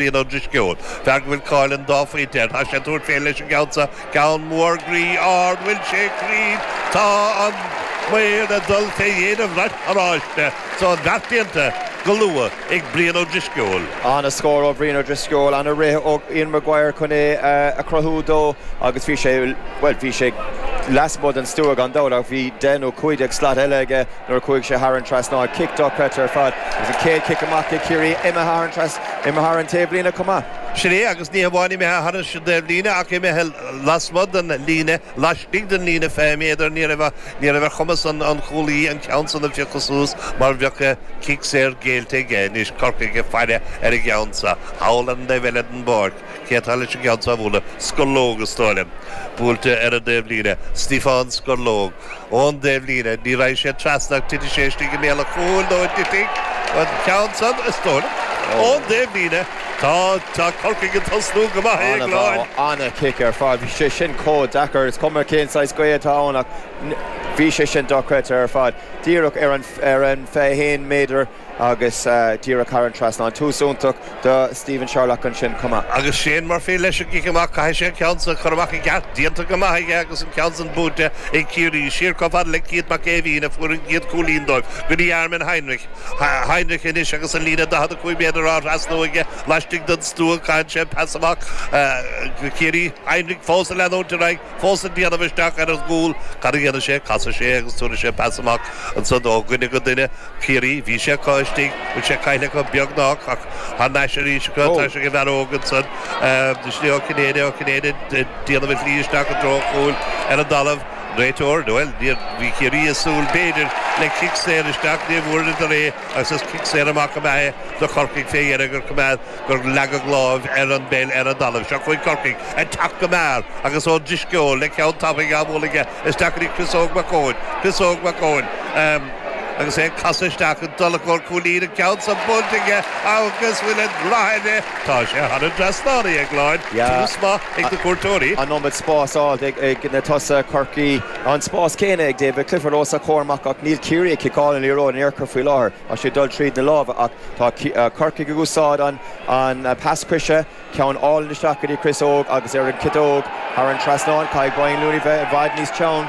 Brian Ó Drisceoil, fear go bhfuil cáil an dá phointe air. Tá sé ag tabhairt fé leis an gceann seo, ceann mór groí ard, an bhfuil sé cruinn, tá an maor ag dul fé dhéin an bhrait oráiste. So an beart déanta go luath ag Brian Ó Drisceoil. Ana scór ó Bhrian Ó Drisceoil, ana rith ó Ian Maguire chun é a chruthú dó agus bhí sé, bhuel, bhí sé leasmuigh den stua gan dabht ach bhí deich nó cúig déag slat eile aige nuair a chuaigh sé thar an trasnán. Cic dochreidte ar fad agus an chéad chic amach ag Ciarraí imithe thar an. Imithe thar an taobhlíne chomh maith. Sin é, agus ní hamháin imithe thar an taobhlíne ach imithe lasmuigh den líne, laistigh den líne fiche méadar. Ní raibh ar chumas an chúl báire an ceann san a phiocadh suas mar bheadh cic saor géillte aige anois, Corcaigh ag faire ar an gceann sa, thall ar an taobh eile den bpáirc. Cé atá leis an gceann seo a bhualadh? Scorlóg, is dóigh liom, buailte ar an dtaobhlíne. Stiofán Scorlóg. ón dtaobhlíne. Ní raghaidh sé trasna ach titfidh sé istigh i mbéal an chúil nó an dtitfidh an ceann san, is dóigh liom. Ón dtaobhlíne, tá, tá Corcaigh ag tosnú go maith, é glan. An-chic ar fad. Bhí sé sin chomh deacair. Is cuma cén saghas gaoth atá ann ach bhí sé sin dochreidte ar fad. Díreach ar an, ar an 21 méadar. agus díreach thar an trasnán. Tús iontach do Stephen Sherlock ansin chomh maith. Agus Shane Murphy leis an gcic amach, caithfidh sé an ceann san a chur amach i gceart. Déanta go maith aige agus an ceann san buaite ag Ciarraí. Siar chomh fada le Cian Mac Éimhín a fuair an chéad chúilín dóibh go dtí Armin Heinrich. Heinrich anois agus an líne 45 méadar á thrasnú aige laistigh den stua, caitheann sé pas amach go Geaney. Heinrich fós ag leanúint ar aghaidh. fós ag déanamh isteach ar an gcúl. Cad a dhéanann sé? Casann sé é agus tabharfaidh sé pas amach ansan ó dhuine go duine. Ciarraí, Bhí sé acu istigh, bhfuil sé caillte acu? Beagnách, ach thar n-ais arís acu, tá sé ag an bhfear óg ansan, is é Ó Cinnéide, Ó Cinnéide ag déanamh a shlí isteach i dtreo an chúil ar an dtalamh. An réiteoir, Bhuel, níor, bhí Ciarraí ag súil b'fhéidir le cic saor isteach, ní bhfuaireadar é agus is cic saor amach ab ea é do Chorcaigh fé dheireadh gur coimeád. gur leagadh lámh ar an bpeil ar an dtalamh. Seo chugainn Corcaigh ag teacht go mear agus Ó Drisceoil le ceann tapaidh á bhualadh aige. Isteach chuig Chris Óg Mac Eoin. Chris Óg Mac Eoin agus é ag casadh isteach ag dul i gcomhair cúilín, an ceann san buailte aige agus bhfuil an fad aige. Tá sé thar an trasnán aige, go hálainn. Tús maith ag na cuairteoirí. An iomad spás ar fad ag na tosaithe Chorcaí. An spás céanna ag David Clifford os a chomhair amach ach níl Ciarraí ag ciceáil an liathróid ina threo faoi láthair. Tá sé ag dul tríd na lámha ach tá Corcaigh ag úsáid an pas coise, ceann álainn isteach go dtí Chris Óg agus ar an chiteog thar an trasnán, caithfidh Dylan Casey bheith i bhfad níos teann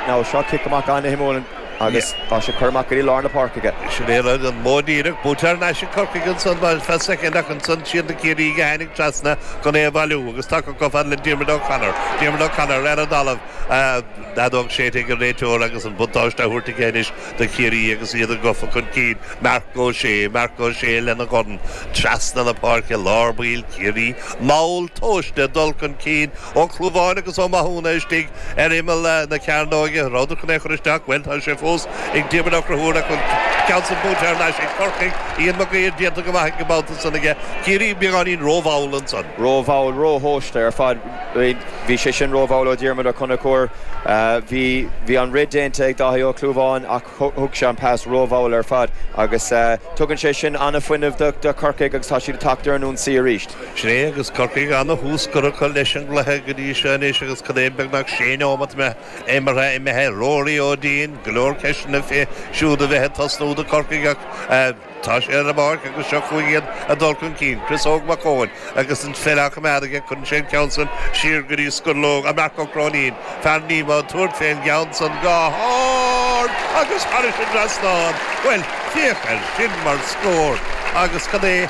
ná seo, cic amach an-shuimiúil agus tá sé ag cur amach go dtí lár na páirce aige. Sin é rud, an modh díreach, buaite thar n-ais ag Corcaigh ansan, bhuel, few seconds ach ansan siad na Ciarraígh a tháinig trasna chun é a bhailiú agus tacú chomh fada le Diarmuid O'Connor, Diarmuid O'Connor ar an dtalamh, an fheadóg séidte ag an réiteoir agus an buntáiste á thabhairt aige anois. do Chiarraí agus iad gafa chun cinn Marc Ó Sé, Marc Ó Sé lena dhorn trasna na páirce lár baill Ciarraí mall tomhaiste ag dul chun cinn, Ó Clúmháin agus Ó Mathúna istigh ar imeall na cearnóige rófhada chun é a chur isteach, bhuel tá sé fós ag Diarmaid Ó Conchúir ach an ceann san buaite thar n-ais ag Corcaigh, Ian Mag Uidhir déanta go maith ag an mbabhta san aige, Ciarraí beagáinín rómhall ansan. rómhall, róthomhaiste ar fad. Bhí sé sin rómhall ó Dhiarmaid Ó Conchúir. Bhí an rith déanta ag Dáithí Ó Clúmháin ach thug sé an pas rómhall ar fad agus tugann sé sin an-fhuinneamh do Chorcaigh agus tá siad ag teacht ar an ionsaí arís. Sin é agus Corcaigh an-thús curtha acu leis an gcluiche go dtí seo anois agus cad é beagnach sé neomat imeartha imithe. Ruairí Ó Déin, go leor ceisteanna fé siúd a bheith ag tosnú do Chorcaigh ach, Tá sé ar an bpáirc agus seo chugainn iad ag dul chun cinn, Chris Óg Mac Eoin agus an pheil á coimeád aige, cuireann sé an ceann san siar go dtí Scurlóg, an Marc Ó Cróinín, fear Nemo, ag tabhairt fén gceann san go hard agus thairis an dtrasnán, bhuel, féach air sin mar scór agus cad é?